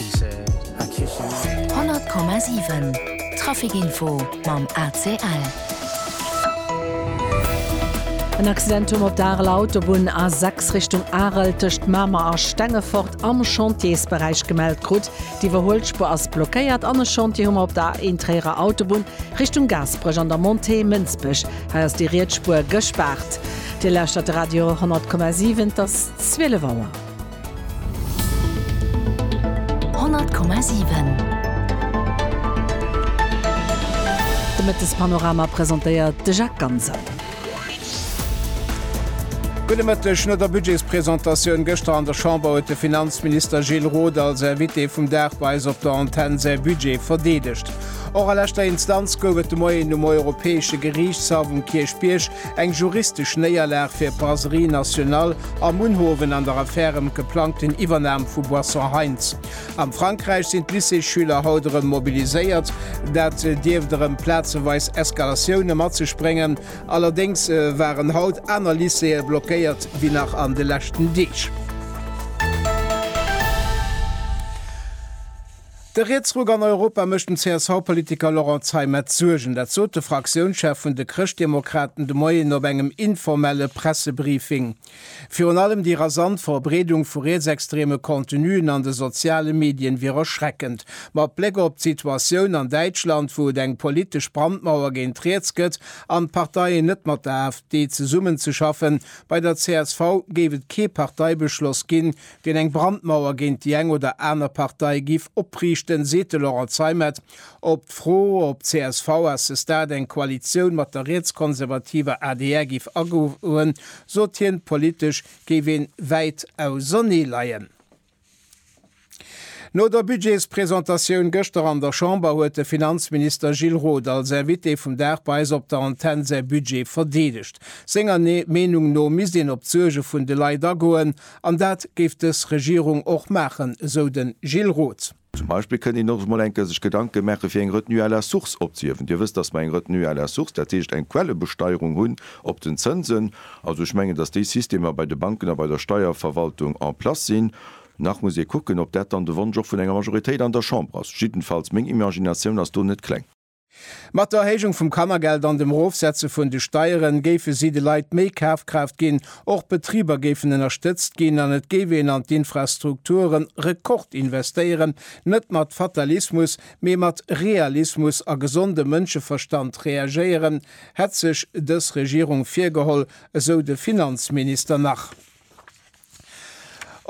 100,7 Trafic-Info mam ACL. En Accidentum op der Areler Autobunn, A6 Richtung Arel, tëscht Mamer a Stengefort am Chantiersberäich gemellt krut. D'Iwwerhuelspuer ass blockéiert an e Chantier hu mer op der A1 Tréierer Autobunn, Richtung Gaasperech an der Montée Mënsbech. Hei ass déi riets Spuer gespaart. Dir lauschtert de Radio 100,7, et ass 12 Auer. 100,7 De Mëttespanorama presentéiert de Jacques Ganser. Gudde Mëtteg. No der Budgetspresentatioun gëschter an der Chamber huet de Finanzminister Gilles Roth als Invité vum Dag bei eis op der Antenn säi Budget verdeedegt. Och a leschter Instanz gouf et de Moien um Europäesche Geriichtshaff um Kierchbierg Eng juristesch Néierlag fir d'Brasserie Nationale a Munhowen an der Affär ëm d'geplangten Iwwernam vu Boissons Heinz. Am Frankräich sinn d'Lycéesschüler haut erëm mobiliséiert. Dat dierft erëm plazeweis Eskalatioune mat sech bréngen. Allerdéngs waren haut aner Lycéeë blockéiert wéi nach an de leschten Deeg. De Rietsruck an Europa mécht dem CSV-Politiker Laurent Zeimet Suergen. Dat sot de Fraktiounschef vun de Chrëschtdemokraten de Moien op engem informelle Pressebriefing. Virun allem déi rasant Verbreedung vu rietsextreme Contenuen an de soziale Medien wier erschreckend. Mat Bléck op d'Situatioun an Däitschland, wou et eng politesch Brandmauer géint riets gëtt an d'Parteien net mat der AfD zesummenzeschaffen, bei der csv géif et kee Parteibeschloss ginn, deen eng Brandmauer géint déi eng oder aner Partei giff opriichten, seet de Laurent Zeimet op d'Fro, ob csv à ce stade eng Koalitioun mat der rietskonservativer adr giff agoen, sot hien, politesch géif ee wäit ausernee leien. No der Budgetspresentatioun gëschter an der Chamber huet de Finanzminister Gilles Roth als Invité vum Dag bei eis op der Antenn säi Budget verdeedegt. Senger Meenung no misst een op d'Suerge vun de Leit agoen An dat géif dës Regierung och maachen, esou de Gilles Roth. Zum Beispill kënnt een och mol eng Kéier sech Gedanke maache fir eng Retenue à la source opzehiewen. Dir wësst, datt mer eng Retenue à la source, dat heescht eng Quellebesteierung hunn op den Zënsen. Also ech mengen, datt déi Systemer bei de Banken a bei der Steierverwaltung en place sinn. Nach muss ee kucken, ob dat dann de Wonsch och vun enger Majoritéit an der Chamber ass. Jiddenfalls, meng Imaginatioun ass do net kleng. Mat der Erhéijung vum Kannergeld an dem Erofsetze vun de Steieren géife si de Leit méi Kafkraaft ginn, och d'Betriber géifen ënnerstëtzt ginn an et géif een an d'Infrastrukturen Rekord investéieren. Net mat Fatalismus, mee mat Realismus a gesondem Mënscheverstand reagéieren, hätt sech dës Regierung virgeholl, esou de Finanzminister nach.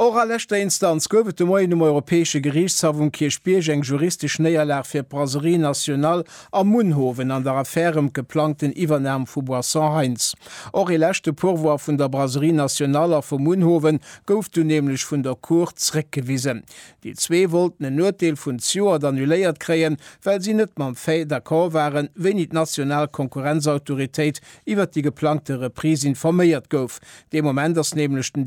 Och a leschter Instanz gouf et de Moien um Europäesche Geriichtshaff um Kierchbierg eng juristesch Néierlag fir d'Brasserie Nationale a Munhowen an der Affär ëm d'geplangten Iwwernam vu Boissons Heinz. Och ee leschte Pourvoi vun der Brasserie Nationale a vu Munhowen gouf dunn nämlech vun der Cour zréckgewisen. Déi zwee wollten en Urteel vun Zjoert annuléiert kréien, well si net mam Fait d'accord waren, wéini d'national Konkurrenzautoritéit iwwert déi geplangte Reprise informéiert gouf. Dee Moment ass nämlech den